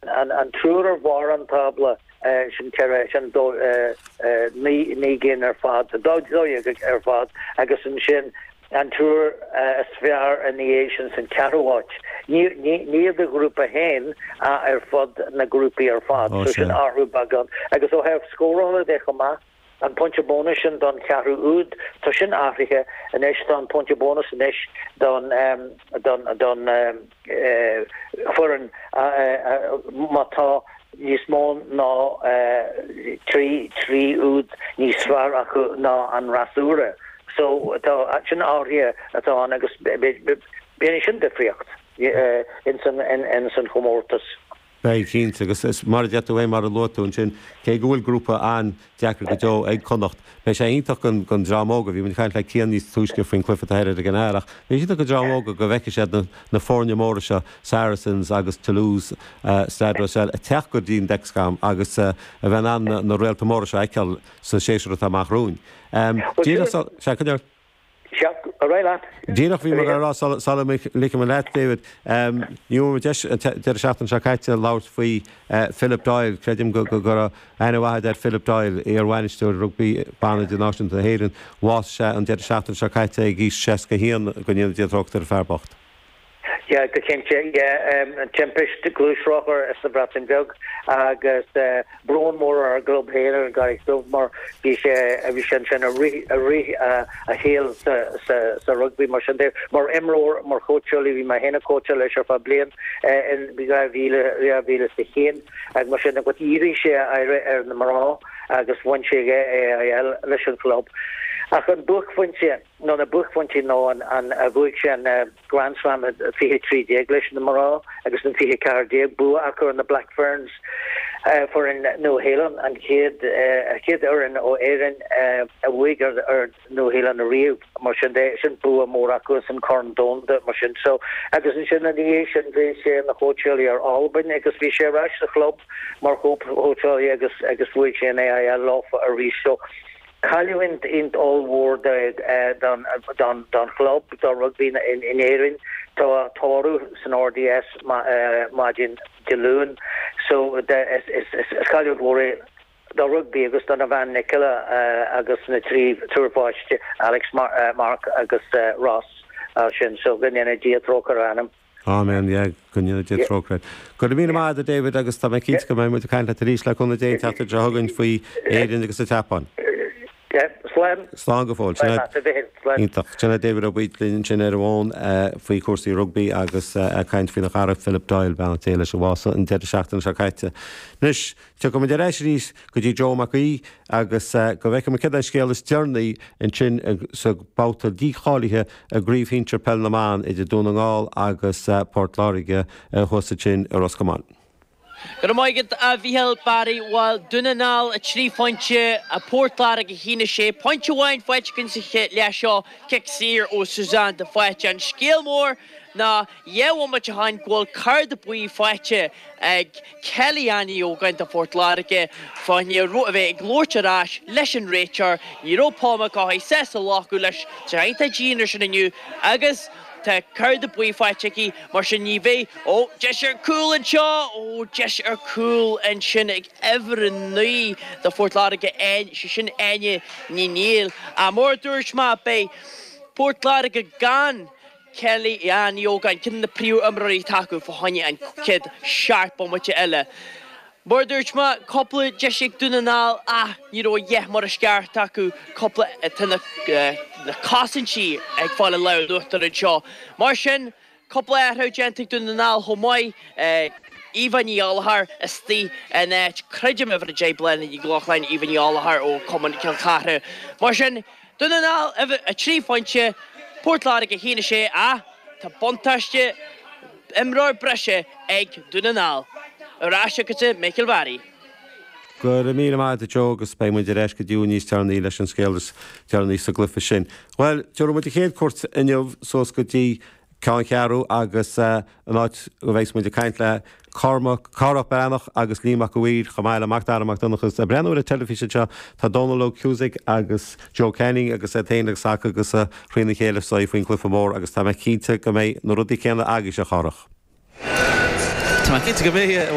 An triúr ar bharr an tábla, sin ceathair, sin dó, naoi gcinn ar fad, dó dhéag ar fad, agus ansin an triúr is fearr ina dhiaidh sin san ceathrú háit. Ní i do ghrúpa féin ach ar fud na ngrúpaí ar fad, so sin athrú beagán, agus ó thaobh scórála de chomh maith, an pointe bónais sin don cheathrú úd, tá sin athraithe anois, tá an pointe bónais anois don fhoireann má tá níos mó ná trí úd níos fearr acu ná an fhreasúra. So tá sin athraithe tá ann agus beidh sin difríocht in san chomórtas. Beidh, cinnte, agus mar a deir tú é mar a luaigh tú ansin, cé go bhfuil grúpa an-deacair go deo ag Connacht, beidh sé iontach don dream óga, bhí muid ag caint le Cian níos túisce faoin chluiche atá ag an Airgintín, beidh sé iontach don dream óga go bhfeicfidh siad na foirne móra seo, Saracens agus Toulouse, Stade Rochelle ag teacht go dtí an Dexcom agus a bheith in ann na réalta móra seo a fheiceáil sa séasúr atá amach romhainn. Díreach sula. Cheap a raibh leat. Díreach bhí mé a rá sula ligfidh mé leat, David, ní bhfuair mé deis an deireadh seachtaine seo caite labhairt faoi Philip Doyle. Creidim go raibh aithne mhaith agat ar Philip Doyle, iarbhainisteoir rugbaí ban idirnáisiúnta na hÉireann. Bhásaigh sé an deireadh seachtaine seo caite ag aois 61, go ndéana Dia trócaire air, an fear bocht. Yeah, go cinnte, yeah. Timpist gluaisrothair sa Bhreatain Bheag agus brón mór ar an gclub féin, ar gCarraig Dhubh, mar bhí sé, bhí sé ansin i rith, i rith a shaoil sa, sa, sa rugbaí. Mar sin de, mar imreoir, mar chóitseálaí, bhí mé féin ag cóitseáil leis ar feadh bliain in 2000, 2001 agus mar sin de ach dhírigh sé a aire ar na mná agus bhain sé an AIL leis an chlub. Ach an buaicphointe. nó na buaicphointí ná nuair a bhuaigh sé an Grand Slam in fiche trí déag leis na mná agus in fiche ceathair déag bua acu ar na Black Ferns, foireann Nua Shéalainn, an chéad fhoireann ó Éirinn a bhuaigh ar Nua Shéalainn ariamh, mar sin de, sin bua mór acu sa Chorn Domhanda, mar sin. So, agus ansin ina dhiaidh sin bhí sé ina chóitseálaí ar Albain agus bhí sé ar ais sa chlub mar chóitseálaí agus bhuaigh sé an AIL leofa arís. So. Cailliúint ollmhór don chlub, do rugbaí in Éirinn. Tá tórramh san RDS maidin Dé Luain. Is cailliúint mhór é do rugbaí agus dona bhean Nicola agus na trí triúr páiste, Alex, Mark agus Ross, as sin. Go ndéana Dia trócaire ar a anam. Áiméan, yeah, go ndéana Dia trócaire air. Go raibh míle maith agat, a David, agus tá mé cinnte go mbeidh muid ag caint leat arís, le cúnamh Dé, an tseachtain seo chugainn faoi Éirinn agus an tSeapáin. Slán. Slán go fóill. Slán, a Mhicil. Slán. Iontach. Sin é David Ó Baoill linn ansin ar an bhfón faoi chúrsaí rugbaí agus ag caint faoina chara Philip Doyle, beannacht Dé leis a bhásaigh an deireadh seachtaine seo caite. Anois, Tiocfaidh muid ar ais arís go dtí Joe Mac Aoidh agus go bhfeicfidh muid céard é an scéal is deireanaí ansin sa bhabhta dícháilithe i gCraobh Shinsir Peil na mBan idir Dún na nGall agus Port Láirge thuas ansin i Ros Comáin. Go raibh maith agat, a Mhichael Barry. Bhuel, Dún na nGall 3 phointe, Port Láirge 1, 6 pointe amháin faighte againn sa chéad leath seo, cic saor ó Suzanne de Faoite. An scéal mór ná dhá bhomaite ó shin go bhfuil cárta buí faighte ag Kelly Ann Ní Ógáin do Phort Láirge. Fá choinne a bheith ag labhairt ar ais leis an réiteoir, ní raibh Paul McCaughey sásta glacadh leis tar éis an dianra sin inniu agus tá cárta buí faighte aici, mar sin ní bheidh Ó, deis ar chúl anseo! Ó, deis ar chúl ansin ag uimhir a naoi do Phort Láirge, Áine, sé sin Áine Ní Néill. Ach mar a dúirt mé, beidh Port Láirge gan. Kelly Ann Ní Ógáin, ceann de na príomhimreoirí atá acu fá choinne an chéad seacht bomaite eile. Mar a dúirt mé, cúpla deis ag Dún na nGall ach ní raibh deis mar is ceart acu, cúpla Tá na cosaintí ag fáil an lámh in uachtar anseo. Mar sin, cúpla athrú déanta ag Dún na nGall chomh maith, Eva Ní Ghallachair istigh in áit, creidim, uimhir 10 Bláthnaid Nic Lochlainn, Eva Ní Ghallachair ó chumann Chill Chartha. Mar sin. Dún na nGall, 3 phointe, Port Láirge 1, 6, ach tá buntáiste imreoir breise ag Dún na nGall ar ais chugatsa Michael Barry. Go raibh míle maith agat a Joe agus beidh muid ar ais go dtí thú níos deireanaí leis an scéal is deireanaí sa gcluiche sin. Bhuel, tabharfaidh muid an chéad cuairt inniu suas go dtí Ceanncheathrú agus an áit a bheas muid ag caint le Cormac, Cárthach Breathnach agus Liam Mac Uidhir chomh maith le Mac Dara Mac Donncha. Ag breathnú ar an teilifís anseo tá Dónal Óg Cusack agus Joe Canning agus iad féin ag sacadh agus ag crinneadh a chéile istigh faoin gcluife mór agus tá mé cinnte go mbeidh na rudaí céanna agaibhse, a Chárthach. Tá mé cinnte go mbeidh.